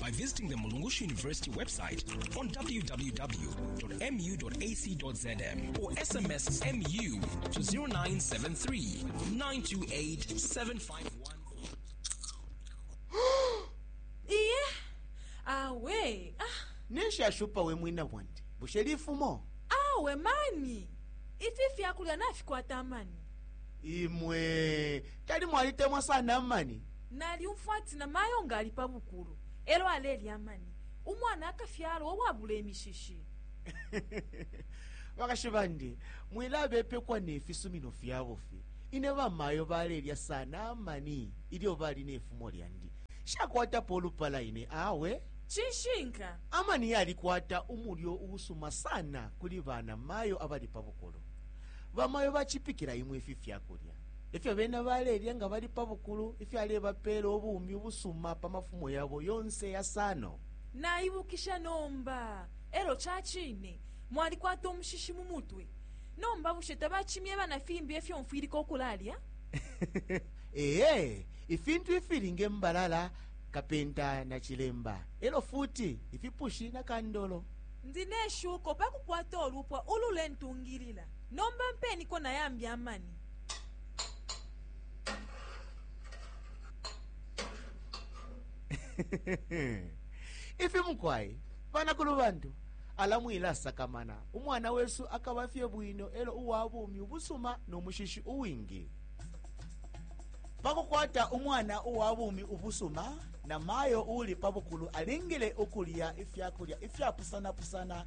by visiting the Mulungushi University website on www.mu.ac.zm or SMS MU to 0973 928 751. iye awe ah, neshashupa we mwina bwandi bushe lifumo awe mani ifi fyakulya nafikwata mani imwe tali mwalitemwa sana amani Nalyumfwa ati na mayo nga ali pa bukulu elo alelya amani, umwana akafyalwa uwabula imishishi. Bakashi bandi, mwilabepekwa ne fisumino fya bufi. Ine bamayo balelya sana amani ilyo bali ne fumo lyandi. Nshakwatapo ulupala ine awe. Cishinka. Amani yalikwata umulyo uusuma sana kuli banamayo abali pa bukulu. Bamayo bacipikila imwe ifi fyakulya. Ifyo bena balelya nga bali pa bukulu ifyalebapeela ubumi ubusuma pa mafumo yabo yonse yasano. Naibukisha nomba. Elyo cacine mwalikwata umushishi mu mutwe. Nomba bushe tabacimyeba na fimbi efyo mfwilika ukulalya? Ee, ifintu ifili nge mbalala, kapenta na cilemba, elyo futi ifipushi na kandolo. Ndi ne shuko pakukwata ulupwa ululentungilila. Nomba mpeniko na yambi amani. Ifi mukwai, bana kulubantu, alamwila sakamana. Umwana wesu akabafye bwino elo uwabumi ubusuma no mushishi uwingi. Pakukwata umwana uwabumi ubusuma, na mayo uli pabukulu alingile ukulya ifyakulya ifyapusana-pusana